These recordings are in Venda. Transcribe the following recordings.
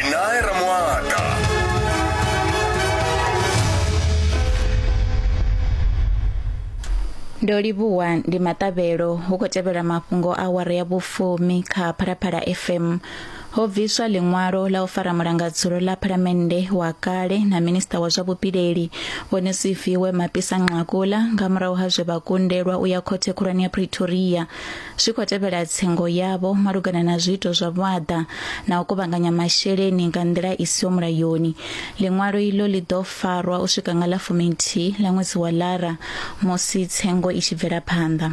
Nae Ramoata. ndo livhuwa ndi maṱavhelo hu khou tevhela mafhungo a wara ya vhufumi kha phalaphala fm ho bviswa ḽiṅwalo la u fara mulangadzulo ḽa phalamennde wa kale na minista wa zwa vhupileli vho nesifiwe mapisa nqakula nga murahu ha zwe vha kundelwa u ya khothe khulwane ya pretoria zwi khou tevhela tsengo yavho malugana na zwiito zwa vhuaḓa na u kuvhanganya masheleni nga nḓila i siho mulayoni ḽiṅwalo iḽo ḽi ḓo farwa u swika nga ḽa fuminthihi ḽa ṅwedzi wa lara musi tsengo i tshi bvela phanḓa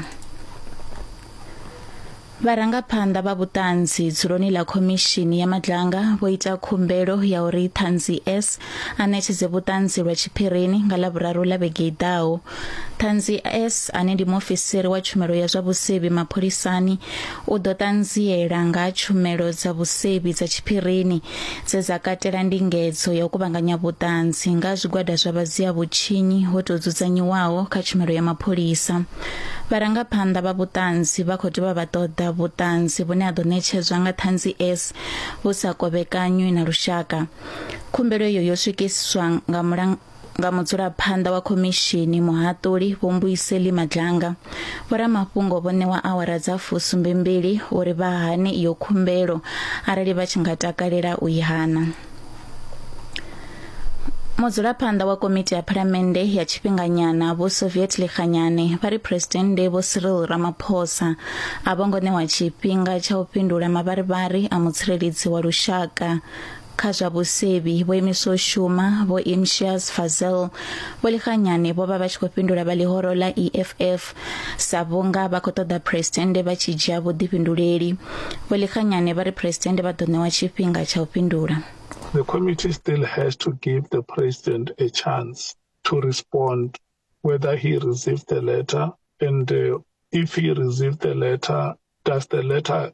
vharangaphanḓa vha vhuṱanzi dzuloni ḽa khomishini ya madlanga vho ita khumbelo ya uri ṱhanzi s a ṋetshedze vhuṱanzi lwa tshiphirini nga ḽa vhuraru ḽa vhege i ḓaho Ṱhanzi S ane ndi muofisiri wa tshumelo ya zwa vhusevhi mapholisani u ḓo ṱanziela nga ha tshumelo dza vhusevhi dza tshiphirini dze dza katela ndingedzo ya u kuvhanganya vhuṱanzi nga zwigwada zwa vhadzia vhutshinyi ho tou dzudzanyiwaho kha tshumelo ya mapholisa. Vharangaphanḓa vha vhuṱanzi vha khou dovha vha ṱoḓa vhuṱanzi vhune ha ḓo ṋetshedzwa nga Ṱhanzi S vhu sa kovhekanywi na lushaka. Khumbelo iyo yo swikiswa nga nga mudzulaphanḓa wa khomishini muhaṱuli Vho Mbuyiseli Madlanga, vhoramafhungo vho ṋewa awara dza fusumbembili uri vha hane iyo khumbelo arali vha tshi nga takalela u i hana. Mudzulaphanḓa wa komiti ya phalamennde ya tshifhinganyana Vho Soviet Lekganyane vha ri Phresidennde Vho Cyril Ramaphosa a vho ngo ṋewa tshifhinga tsha u fhindula mavharivhari a mutsireledzi wa lushaka Kha zwa vhusevhi, vho imiswa u shuma Vho Imtiaz Fazel, Vho Likhanyane vho vha vha tshi khou fhindula vha ḽihoro ḽa EFF sa vhunga vha khou ṱoḓa Phresidennde vha tshi dzhia vhuḓifhinduleli. Vho Likhanyane vha ri Phresidennde vha ḓo ṋewa tshifhinga tsha u fhindula. The committee still has to give the President a chance to respond whether he received the letter and uh, if he received the letter, does the letter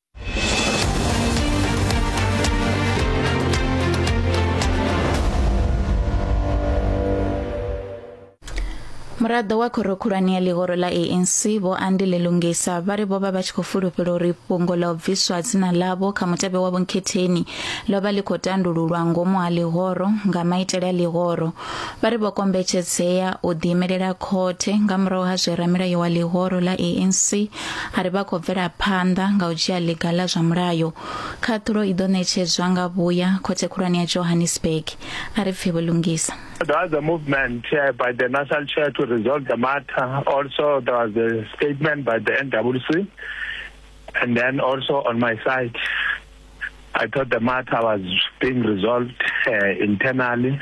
muraḓo wa khoro khulwane ya ḽihoro ḽa anc vho andile lungisa vha ri vho vha vha tshi khou fulufhela uri fhungo ḽa u bviswa dzina ḽavho kha mutevhe wa vhunkhetheni ḽo vha ḽi khou tandululwa ngomu ha ḽihoro nga maitele a ḽihoro vha ri vho kombetshedzea u ḓiimelela khothe nga murahu ha zwe ramilayo wa ḽihoro ḽa anc A ri vha khou bvela phanḓa nga u dzhia ḽiga ḽa zwa mulayo. Khaṱhulo i ḓo ṋetshedzwa nga vhuya Khothe Khulwane ya Johannesburg, a ri pfi vhulungisa. There was a movement uh, by the National Chair to resolve the matter. Also, there was a statement by the NWC, and then also on my side, I thought the matter was being resolved uh, internally.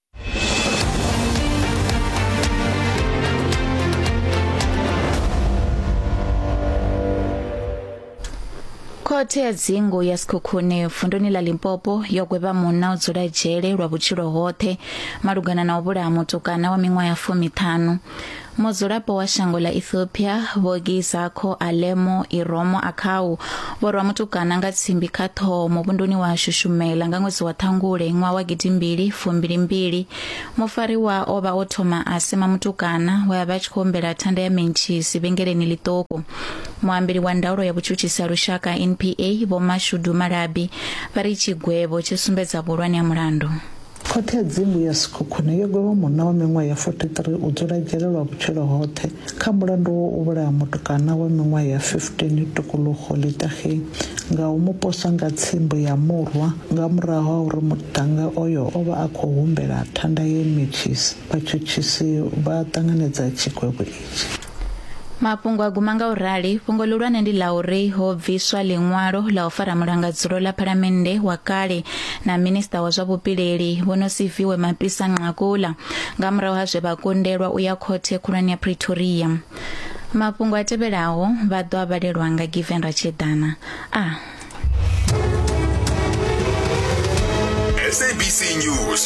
khothe ya dzingu ya sikhukhune vunduni ḽa limpopo yo gwevha munna o dzula dzhele lwa vhutshilo hoṱhe malugana na u vhulaha mutukana wa miṅwaha ya fumiṱhanu Mudzulapo wa shango ḽa Ethiopia Vho Gizakho Alemo Iromo Akhau vho rwa mutukana nga tsimbi kha ṱhoho muvhunduni wa Shushumela nga ṅwedzi wa Ṱhangule ṅwaha wa gidimbili fumbilimbili. Mufariwa o vha o thoma a sema mutukana we a vha a tshi khou humbela thanda ya mentshisi vhengeleni ḽiṱuku. Muambeli wa ndaulo ya vhutshutshisi ha lushaka NPA Vho Mashudu Malabi vha ri tshigwevho tshi sumbedza vhuhulwane ha mulandu. Khothe ya Dzimu ya Sekhukhune yo gwevha munna wa miṅwaha ya 43 u dzula dzhele lwa vhutshilo hoṱhe kha mulandu wa u vhulaha mutukana wa miṅwaha ya 15 Tukuluxo Litageng nga u mu posa nga tsimbo ya murwa nga murahu ha uri muṱhannga oyo o vha a khou humbela thanda ye metshisi. Vhatshutshisi vha ṱanganedza tshigwevho itshi. Mafhungo a guma nga u rali, fhungo ḽihulwane ndi ḽa uri ho bviswa ḽiṅwalo ḽa u fara mulangadzulo ḽa phalamennde wa kale na minista wa zwa vhupileli Vho Nosiviwe Mapisa-Nqakula nga murahu ha zwe vha kundelwa u ya khothe khulwane ya Pretoria. Mafhungo a tevhelaho vha ḓo a vhalelwa nga Given Ratsheḓana. A. SABC News